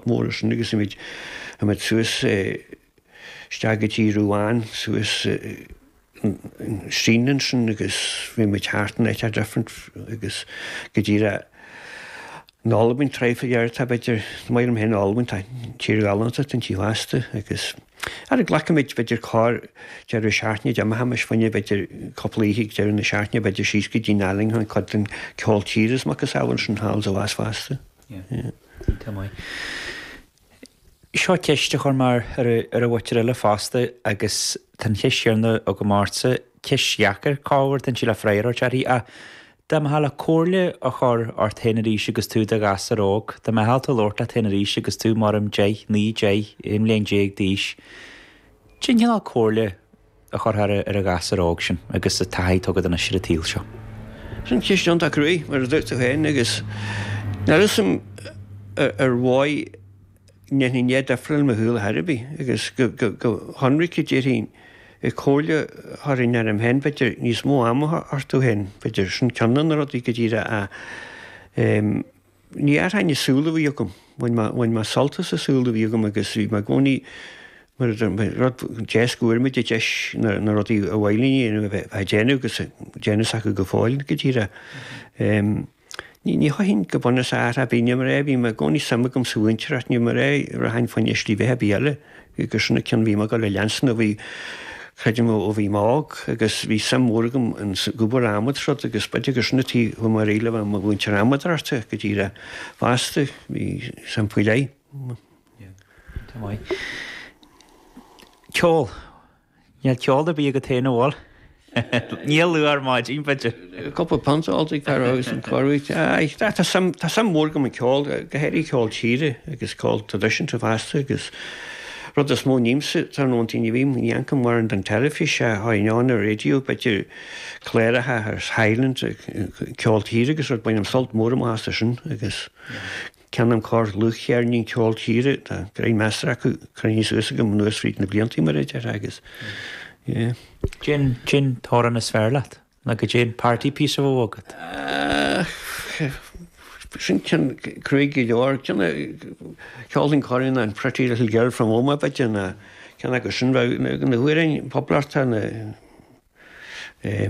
mór sin agus théimid suas isteach go dtí Ruán suas an stín ansin agus bímid thart in áit different agus go dtí ra an Albain tráigh faoi dheireadh tá b'fhéidir tá maith orm féin an Albain tá tír ghalánta den tí ghasta agus ara glacaimid b'fhéidir corr deireadh seachtaine de amaith amais bhainne b'fhéidir cúpla oíche ag deireadh na seachtaine b'fhéidir síos go dtí Nottingham cad den ceol tíre is a mhacasamhail sin thall is abhus fosta. Seo ceist a chuir mé ar dhaoine eile fosta agus tá an cheist chéanna agam ortsa. Ceist dheacair, ach ar fiú an fiafraí ort í. Ach dá mbeifeá le comhairle a chur ort féin arís agus tú i do ghasúr óg, dá mbeadh tú ag labhairt leat féin arís agus tú, abraim, deich, naoi, deich, aon bhliain déag d'aois, cén cineál comhairle a chuirfeá ar an ghasúr óg sin agus an taithí atá agat anois ar an tsaol seo. Sin ceist iontach cruaidh, mar a dúirt tú féin, agus níl a fhios a'm an mbeadh go ndéanfainn a'n rud difriúil i mo shaol ar dhóigh ar bith, agus go hionraic a déarfainn an chomhairle a thabharfainn orm féin b'fhéidir níos mó ama a thabhairt duit féin b'fhéidir, sin ceann de na rudaí go díreach a Ní athróinn an saol a bhí agam. Bhain mé sult as an saol a bhí agam agus bhí mé i gcónaí, mar a deir mé, rud deas go bhfuair muid an deis na rudaí ba mhaith linn a dhéanamh a bheith á déanamh agus ag déanamh acu go fóill, go díreach. Ní athróinn go bunúsach ar bith, ní mar a, bhí mé i gcónaí suim agam sa mhúinteoireacht, ní mar a, rachainn fá choinne slí bheatha ar bith eile. Agus sin an ceann a bhí mé ag gabháil a leanstan a bhí, creidim, ó bhí mé óg agus bhí suim mhór agam ins an obair adhmaid is rud agus b'fhéidir gur sin an tuige a bhfuair mé a'd le bheith i mo mhúinteoir adhmadóireachta, dtuigeann tú leat, fosta, bhí suim faoi leith. Ceol. Níl ceol ar bith agat féin an bhfuil? Níor luadh ar maidin, b'fhéidir. Cúpla punt a d'óltaí cá raibh agus an cóiriú ite. Aye, tá suim, tá suim mhór agam i gceol, go háirithe ceol tíre agus ceol traidisiúnta fosta agus rud is mó a ním sa tráthnónta, ní bhím, ní amharcaim mórán ar an teilifís, éistim leis an raidió, b'fhéidir cláracha as Highland, ceol tíre agus rud, bainim sult mór amach as sin agus. Ceannaim corr dlúthcheirnín ceol tíre, tá gráinnín measartha acu, cruinnithe suas agam anuas fríd na bliantaí mar a déarfá agus yeah. Cén t-amhrán is fearr leat, nó goidé an party piece a bheadh agat. Ah, sin ceann cruaidh go leor, ceann a cheolfainn corruair an Pretty Little Girl from Omagh b'fhéidir ceann acu sin, bheadh na hamhráin poblachtánacha, eh,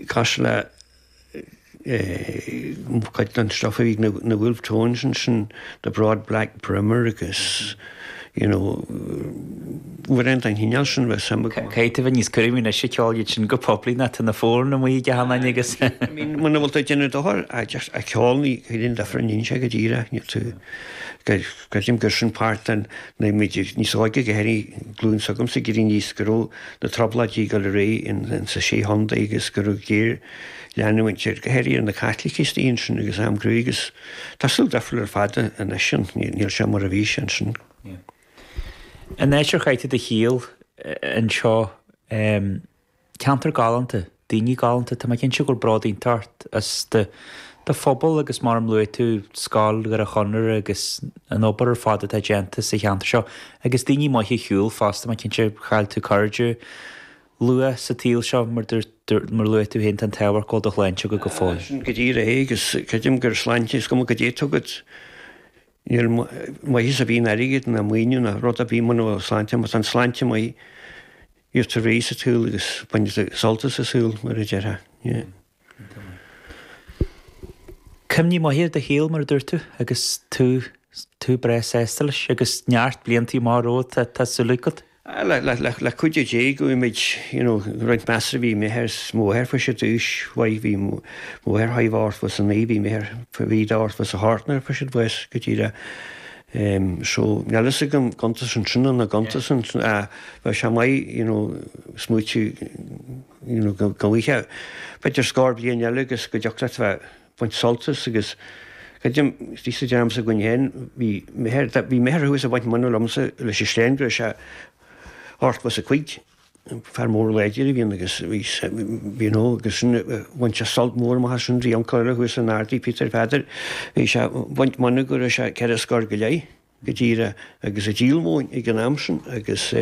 Cosúil le cuid den stuff a bhí na Wolfe Tones ansin, the Broad Black Brimmer agus you know amhráin den chineál sin a bheith suimiúil go maith. Caithfidh tú a bheith níos cúramaí anois ag ceol iad sin go poiblí nó tá na fónanna amuigh ag achan duine agus. I mean muna bhfuil tú ag déanamh dochar ag ceol cad é an difear a níonn sé go díreach, níl tú, Creidim gur sin páirt den nuair a bhí muid níos óige go háirithe glúin s'agamsa ag éirí aníos go raibh na Trioblóidí ag dul ar aghaidh insna sé chontae agus go raibh géarleanúint go háirithe ar na Caitlicigh istigh ansin agus am cruaidh agus tá saol difriúil ar fad anois ann níl sé mar a bhí sé ansin. An áit ar chaith tú do shaol anseo? Ceantar galánta. Daoine galánta. Tá mé cinnte go bhfuil bród iontach ort as do do phobal agus mar a luaigh tú, Scoil Dhoire Chonaire agus an obair ar fad atá déanta sa cheantar seo. Agus daoine maithe ar shiúl fosta, tá mé cinnte. Chaill tú cairde luath sa tsaol seo mar dúirt, mar a luaigh tú féin, tá an t-ádh ort go bhfuil do shláinte agat go fóill. Ah, sin go díreach é agus creidim gur sláinte is cuma cad é atá agat, níl maitheas ar bith in airgead ná maoiniú ná rud ar bith muna bhfuil sláinte, má tá an sláinte maith, Tú ar aghaidh sa tsaol agus baint sult as an tsaol, mar a déarfá. Cuimhní maithe ar do shaol, mar a dúirt tú, agus tú breá sásta leis agus neart blianta maithe romhat, tá súil agam. Le cuidiú Dé, gheobhaidh muid roinnt measartha. Bhí m'athair is mo mháthair fosta d'aois mhaith, bhí mo mháthair ochtó is a naoi, bhí m'athair ochtó is a thart air fosta d'aois go díreach. em, so, níl a fhios agam, an gcuntasann sin nó nach gcuntasann, ach bheadh sé maith, you know, smaoitiú, you know, go, go bhfaighfeá, b'fhéidir scór bliain eile agus go dtiocfadh leat bheith baint sult as agus, creidim, tí sa dream s'againn féin, bhí m'athair, bhí m'athair thuas a' baint mónadh liomsa leis an sleán go raibh sé ochtó is a cúig. fear mór láidir a bhí ann agus bhí sé you know agus sin bhain sé sult mór amach as. Sin d'uncail thuas san Ardaidh Peter Pheadair. Bhí sé ag baint mónadh go raibh sé ceithre scór go leith go díreach agus é ag díol móin ag an am sin agus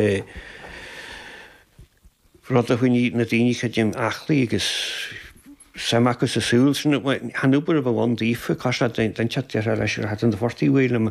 rud a choinnigh na daoine creidim aclaí agus suim acu sa saol. Chan obair a bhí ann daofa, cosúil le dainséar deartháir leis ar a hat chun an phortaigh way le